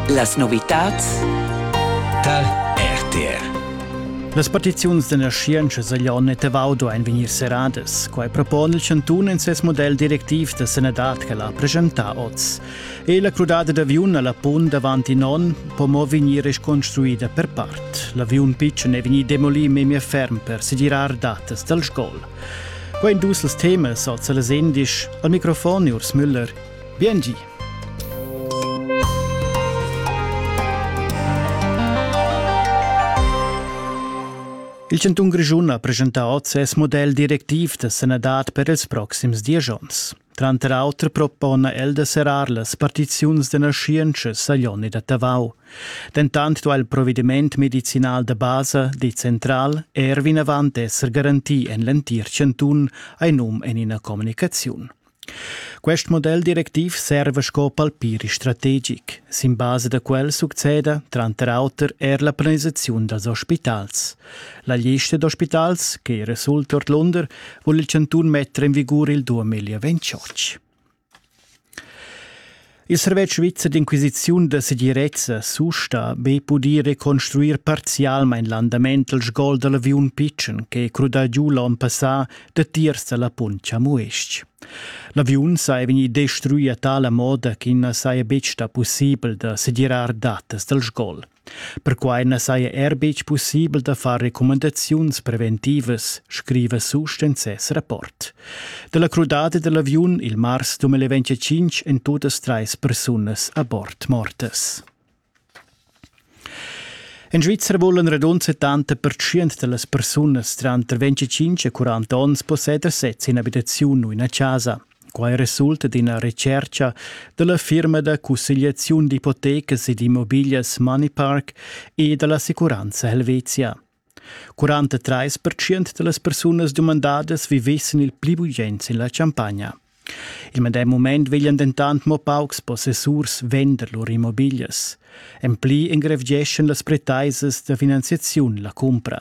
Las novitads tar RTR. Las petiziuns d'energientscha seglion e tevaudo ein vegnir seradas. Quei propon il chantun in ses model directiv da sanadad che l'ha presentà oz. E la crudada d'aviun alla punt davant in onn po mo vegnir reconstruida per part. L'aviun pitschen è vegnì demolì memia ferm per segirar datas dal sgol. Quei dus els temas oz a las indisch. Al microfon Urs Müller. Biengi! Il chantun Grischun ha presentà oz ses model directiv da sanadad per ils proxims diesch onns. Tranter auter propona el da serrar las partiziuns da naschientscha Saglioni da Tavau. Dentant duai il provediment medicinal da basa decentral er vinavant esser garantì en l'entir chantun, hai num en ina communicaziun. Quest model directiv serva sco palpiri strategic. Sin basa da quel succeda tranter auter er la planisaziun dals ospitals. La lista d'ospitals, che resulta ordlunder, vul il chantun metter en vigur il 2028. Il servetsch svizzer d'inquisiziun da segirezza susta be pudir reconstruir parzialmain l'andament dal sgol da l'aviun pitschen ch'è crudà giu l'onn passà datiers da la punt Chamues-ch. L'aviun saja vegnì destruì a tala moda ch'i na saja betg stà pussibel da segirar datas dal sgol. Perquai na saja er betg pussibel da far recumandaziuns preventivas, scriva Susch en ses rapport. Da la crudada da l'aviun il mars 2025 èn totas trais persunas a bord mortas. En Svizzera vulan radund 70% da las persunas tranter 25 e 40 onns posseder sez in'abitaziun u ina chasa. Quai resulta d'ina retschertga da la firma da cussegliaziun d'ipotecas e d'immobiglias Moneypark e da l'assicuranza Helvetia. 43 da las persunas dumandadas vivessen il pli bugens en la champagna. Il medem mument veglian dentant mo paucs possessurs vender lur immobiglias. En pli engrevgeschan las pretaisas da finanziaziun la cumpra.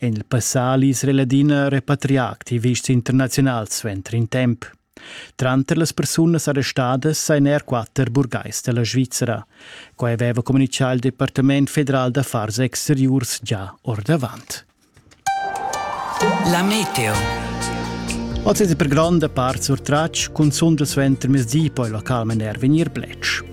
En il passali es l'Engiadina repatrià activists internaziunals suenter in temp. Tranter las persunas arrestadas sajan er quatter burgais da la Svizra. Quai aveva communitgà il Departament federal d'affars exteriurs già ordavant. La meteo. Oz è per gronda part surtratg, cunzunt suenter mezdi poi il local maner vegnir bletsch.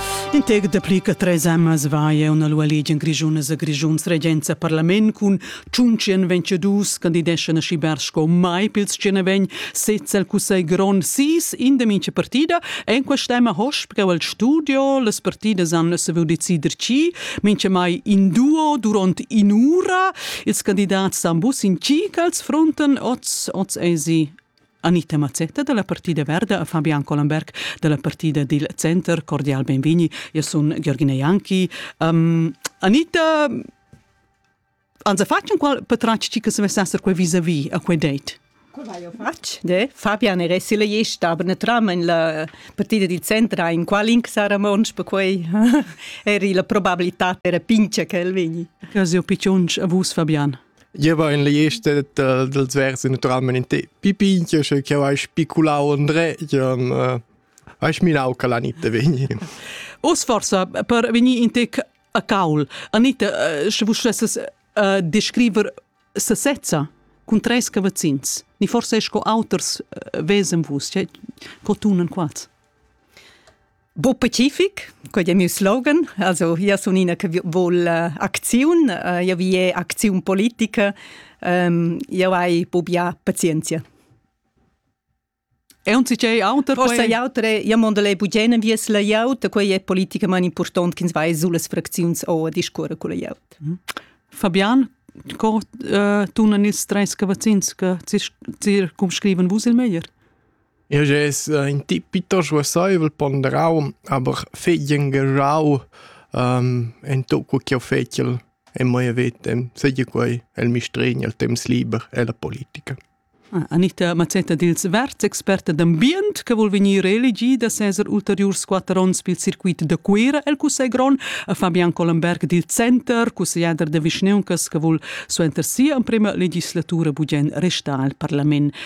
In tec dapli che treis emmas vaia una lua legia grischunas a Grischuns regenza parlament cun tschunchen vencedus candideschan a schibar sco mai pils tschenavegn sez al cussegl grond sis in de mincha partida en quest'emma hosp che al studio las partidas han saviu decider chi mincha mai in duo durant in ura ils candidats san bus in chi als fronten oz oz esi Anita Mazzetta da la Partida Verda e Fabian Collenberg da la Partida dil Center cordial benvegni. Io sun Giorgina Janki. Um, Anita, anza fatg un qual patrac ci che se vessasser quei vis-a-vis a quei date? Qual hai fatg? De? Fabian era si la gesta, aber ne tram in la partida dil centra in qual inc sarà mons per quei. Eri la probabilità era pincha che el vegni. Che sio picciunch a vus, Fabian? Io va in l'ester dal, dals vers naturalmain in te. Pipi, io sche che hai spiculau André, io hai sminau che l'Anita vegni. Os forsa per venir in te a caul. Anita, sche vus stesses uh, descriver sesezza cun treis cavazzins. Ni forse sco auters uh, vesen vus, che cotunen quads. Bo pacific, quei è miu slogan. Also, io sun ina che vol uh, acziun, uh, io vi è acziun politica, um, io hai bubbia pazienzia. E un c'è auter? Forse quei... autre, io mondo le bugene vies la iauta, quei è politica man important che vai sulle fraczions o a discorre con la iauta. Mm. Fabian, co uh, tu non il stress che vaccins che circumscriven vus il meglier? Eu gess ün tip piitost versaivel ponderau, aber fegl engagiau ento co ch'eu fetschel e mai vetem, seigi quai el mistregn, el temps liber e la politica. Anita Mazzetta dils Verds, experta d'ambient che vul vegnir reelegida seser ulteriurs quatter onns pil circuit da Cuira el Cussegl Grond, a Fabian Collenberg dil Center, cussegliader da vischneuncas che vul suenter sia emprema legislatura bugen restar al parlament.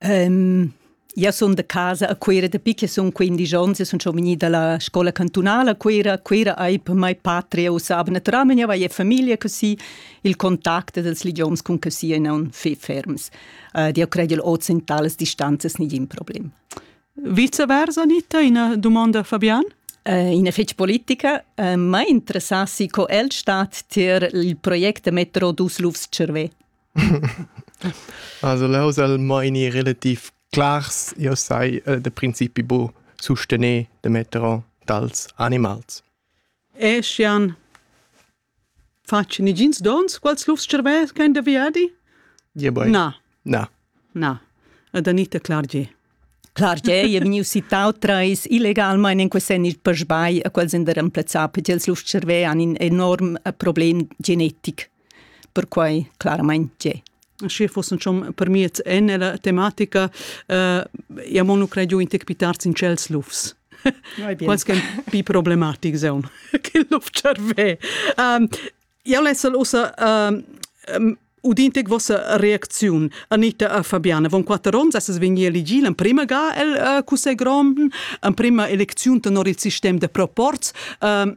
Um, Io sun da casa a Cuira da picche sun quindisch ons e sun schon vegnida alla scola cantunala a Cuira. Cuira hai per mai patria usava naturalmente, io avevo famiglia così, il contatto dels idioms con così e non fi ferms. Uh, io credo oz in tales distanzas nigin problem. Viceversa, Anita, una domanda Fabian? Eh, in fec politica, eh, ma interessassi co el stat tier il project Metro dus Lufs Cervè. Also leu el meini relativ clars, io sai eh, da principi bu sustener da metter on dals animals. E schian facen igins dons, quals lufs cervès ch'ein da viadi? Ja, boi. Na. Na. Na. Ed Anita Clargier. Clargier è vegniu citau treis illegalmein in quest senni per sbagl a quels in der remplazzar per ils lufts cervè han in enorm eh, problem genetic. perquai claramain tge. Sche fossen schon permiert en la tematica, uh, ja monu credu in tec pitarz in cels lufs. Quals che pi problematic seun che luf cerve. Um, ja lesel usa um, udintec vossa reacziun Anita a Fabiana von quatter ons es vegni elegil en prima ga el uh, cussegrom en prima elecziun tenor il sistem de proports um,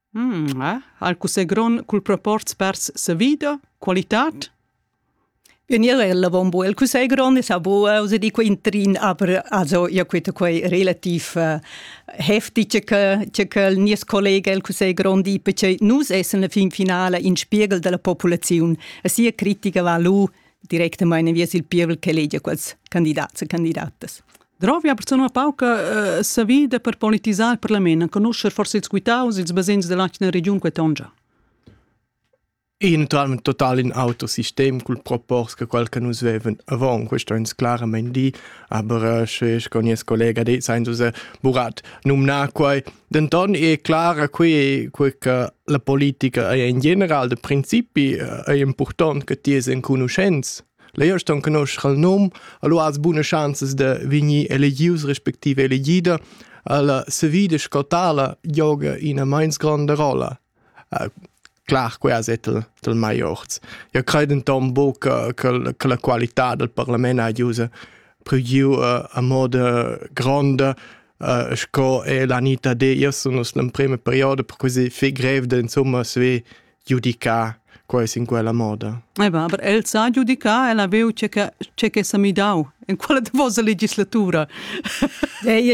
Mh, eh? Al cussè grond cul proporz pers savida, qualitad? Vegnirel avombo. Il cussegl grond es abo, osa di quai intrin, aber also ia queta quai relativ uh, heftig, che, che quel nies collega il cussegl grond di, perché nus essen la fin finale in spiegel della populaziun. A sia critica va lu directamente viers il pievel che legia quels candidats e candidatas. Drovi ha persuna pauca uh, savida per politisar il parlament, conoscer forse ils quitaus, ils basegns dell'atgna region quetongia. Eventualmente total in autosistem cul propors che quel che nus veven avon questo ins clarament di aber sche con nies collega de Sainzuse Burat numna quei denton è clara qui qui che la politica è in general de principi è important che ti es en conoscenz Leu ston conoscher il num, allura has buna schanzas da vegnir elegius respektive elegida. Alla savida sco tala gioga ina meins gronda rolla. Uh, clar, quei as è tel, tel mai orts. Io cred denton buc che, che, che la qualità del parlament ha giusa prigiu uh, a moda gronda uh, sco è l'Anita de. Io sono l'emprema periodo per così fi grev de insomma sve giudicar quai in quella moda. Eba, aber el sa giudicar, el ha veu ce che, ce che sa midau in quella davosa legislatura. Ei ei